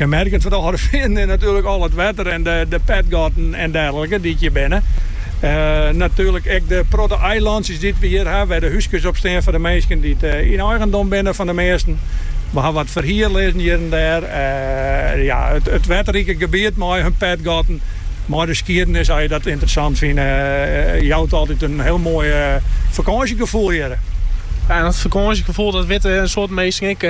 Kenmerkend foar de Alde Feanen is natuerlik al it wetter en de petgatten en derlike dy't hjir binne. Natuerlik ek de protte eilantsjes dy't we hjir ha, wêr't de húskes op stean foar de minsken dy't yn eigendom binne fan de measten. We ha wat ferhier lizzen hjir en dêr. Ja, it wetterrike gebiet mei har petgatten, mei de skiedenis, as je dat ynteressant fine, jout altyd in hiel moai fakânsjegefoel hjir. Ja, en dat fakânsjegefoel dat witte in soad minsken ek.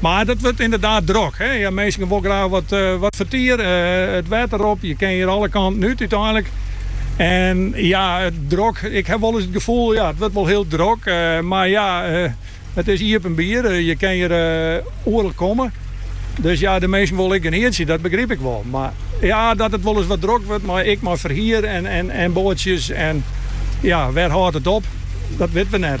Mar it wurdt ynderdaad drok. Minsken wol graach wat fertier it wetter op. Je kinne hjir alle kanten út úteinlik. En ja, drok. Ik ha wolris it gefoel, ja, it wurdt wol hiel drok. Mar ja, it is iepenbier. Je kinne hjir oeral komme. Dus ja, de minsken wolle ek genietsje, dat begryp ik wol. Mar ja, dat it wolris wat drok wurdt, mei ek mei ferhier en boatsjes en ja, wêr hâldt it op? Dat witten we net.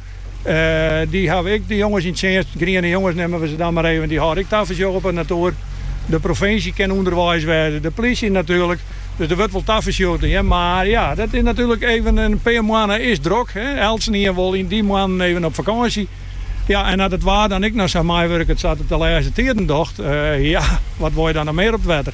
dy hawwe ek jonges yn tsjinst. Griene jonges neame we se dan mar even. Dy hâlde ek tafersjoch op it natoer. De provinsje kin ûnderweis wêze, de plysje natuerlik. Dus der wurdt wol tafersjoch dien. Mar ja, dat is natuerlik even in pear moanne is drok. Eltsenien wol yn dy moannen even op fakânsje. Ja, en as it waar dan ek noch sa meiwurket sa't it de lêste tiden docht, ja, wat wol je dan noch mear op it wetter?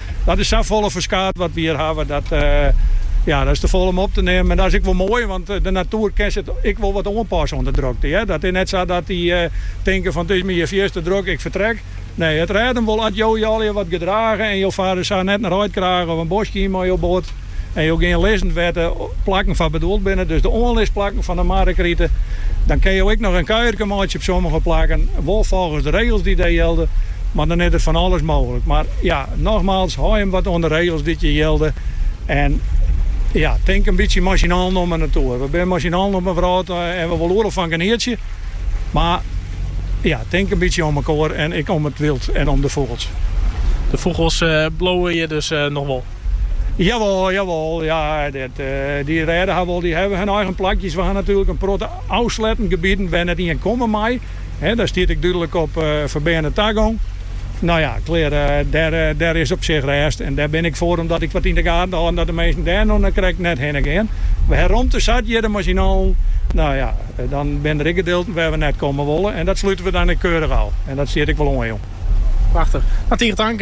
Dat is sa folle ferskaat wat we hjir hawwe, dat ja, dat is te folle om op te neamen. En dat is ek wol moai, want de natoer kin zich ek wol wat oanpassen oan de drokte. Hè? Dat is net sa dat dy eh, tinke fan it is my hjir fierst te drok, ik fertrek. Nee, it rêdt him wol as jo jo allegear wat gedrage en jo farre sa net in reidkraach of in bosk yn mei jo boat. en jo gean lizzen wêr't de plakken foar bedoeld binne, dus de oanlisplakken fan de Marrekrite, dan kinne jo ek noch in kuierke meitsje op sommige plakken, wol folgens de regels dy't dêr jilde, mar dan is der fan alles mooglik. Mar ja, nogmaals, hâld jim wat oan de regels dy't hjir jilde en ja, tink in bytsje mei syn allen om 'e natoer. We binne mei syn allen op 'e wrâld en we wolle oeral fan genietsje, mar ja, tink in bytsje om elkoar en ek om it wyld en om de fûgels. De fûgels bliuwe hjir dus noch wol? Jawol, jawol, ja, dat, dy rêde har wol, dy hawwe hun eigen plakjes. We ha natuerlik in protte ôfsletten gebieden wêr't net ien komme mei. Dêr stiet ek dúdlik op ferbeane tagong. No ja, klear, dêr is op sich rêst en dêr bin ik ek foar om dat ek wat yn de gaten te hâlden dat de minsken dêr no krekt net hinne gean. We ha romte sat hjir mei syn allen, no ja, dan binne der ek gedilten wêr't we net komme wolle en dat slute we dan ek keurdich ôf en dat stiet ek wol oanjûn. Prachtich. Tige tank.